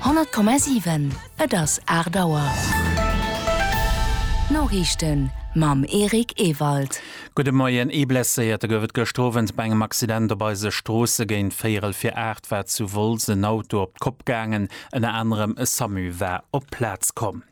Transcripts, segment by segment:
100,7 Et ass 8 Auer. D'Noriichten mam Eric Ewald. Gudde Moien. Ee Blesséierte gouf et gëscht Owend bei engem Accident op eise Stroosse. Géint véierel vir 8 war zu Wolz en Auto op d'Kopp gaangen. Ënner anerem e Samu war op d'Plaz komm.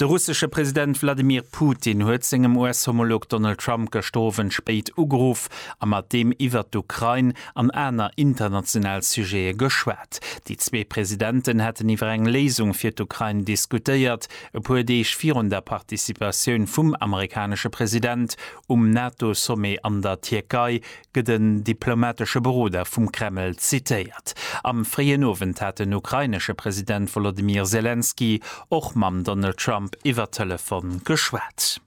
De russesche President Wladimir Putin huet sengem US-Homolog Donald Trump gëschter Owend spéit ugeruff a mat deem iwwert d'Ukrain an aner international Sujete geschwat. Déi zwee Presidenten hätten iwwer eng Léisung fir d'Ukrain diskutéiert, e puer Deeg virun der Participatioun vum amerikanesche President um NATO-Sommet an der Tierkei, gëtt en diplomatesche Beroder vum Kreml zitéiert. Am fréien Owend hat den ukrainesche President Wolodymyr Selenskyj och mam Donald Trump iwwer Telefon geschwat.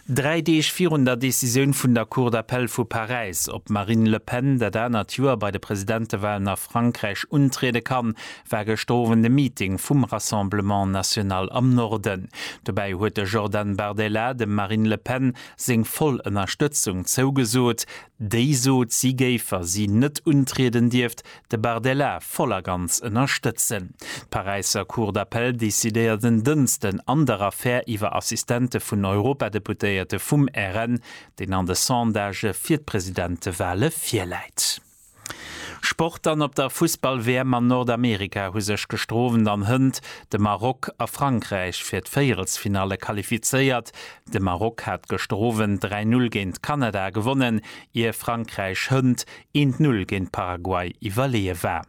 Dräi Deeg virun der Decisioun vun der Cour d'appel vu Paräis, ob d'Marine Le Pen dat anert Joer bei de Presidentewalen a Frankräich untriede kann, war gëschter Owend e Meeting vum Rassemblement National am Norden. Dobäi huet de Jordan Bardella dem Marine Le Pen seng voll Ënnerstëtzung zougesot, déi sot, si géif, wa si net untrieden dierft, de Bardella voll a ganz ënnerstëtzen. D'Paräisser Cour d'appel decidéiert en Dënsten an der Affär iwwer Assistente vun Europadeputéierte vum RN, deen an de Sondagë fir d'Presidentewale virläit. Sport an op der Fussball-WM an Nordamerika hu sech gestrowen an hënt de Maroc a Frankräich fir d'Véierelsfinalle qualifizéiert. De Maroc hat gestrowen 3-0 géint Kanada gewonnen, ier Frankräich hënt 1-0 géint Paraguay iwwerleeë war.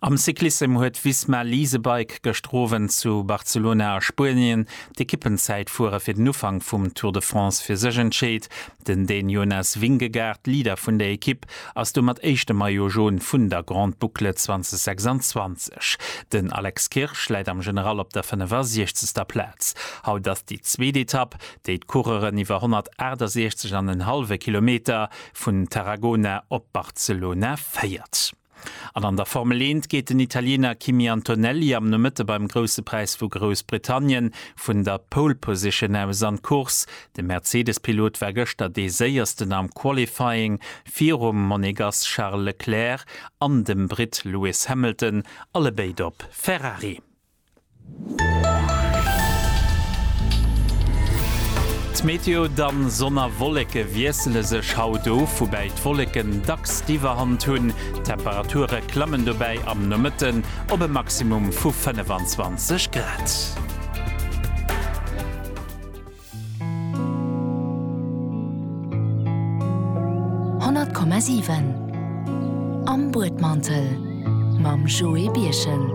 Am Cyclissem huet Visma Leasebike gëschter Owend zu Barcelona a Spuenien d'Ekippenzäitfuere fir den Ufank vum Tour de France fir sech entscheet. Den Dän Jonas Vingegaard, Leader vun der Ekipp, ass domat éischte Maillot Jaune vun der Grande Boucle 2026. Den Alex Kirsch läit am General op der 65. Plaz. Haut ass déi zweet Etapp, déi d'Coureuren iwwer 168 an en hallwe Kilometer vun Tarragona op Barcelona féiert. An an der Formel Eent geet den Italiener Kimi Antonelli am Nomëtte beim Grousse Präis vu Groussbritannien vun der Pole Position aus an d'Course. De Mercedes-Pilot war gëschter dee Séiersten am Qualifying, virum Monegass Charles Leclerc an dem Britt Lewis Hamilton, allebéid op Ferrari. D'Meteo, Dann, Sonn a Wolleke wiessele sech haut of, woubäi d'Wolleken dacks d'Iwwerhand hunn. D'Temperature klammen dobäi am Nomëtten op e Maximum vu 25 Grad. 100,7 Am Buedmantel mam Joé Birchen.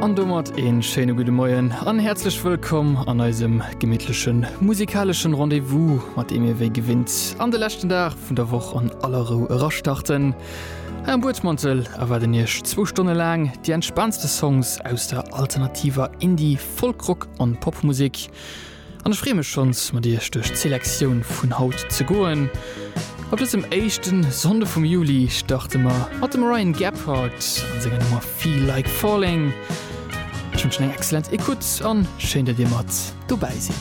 An domat een schéine gudde Moien an häerzlech wëllkomm an eisem gemittlechen musikaleschen Rendez-vous, mat deem mir wéi gewinnt an de leschten Dag vun der Woch an aller Rou erastarten. Hei am Buedmantel erwaarden Iech zwou Stonne laang déi entspaantste Songs aus der alternativer Indie-, Folk, Rock an Popmusik. An ech freen mech schons mat iech duerch d'Selektioun vun haut ze goen. Op dësem éischten Sonnde vum Juli starten mer mat dem Ryan Gephardt an senger Nummer Feel Like Falling. Ech wënschen eng excellent Ecoute an schéin dat dir mat dobäi sidd.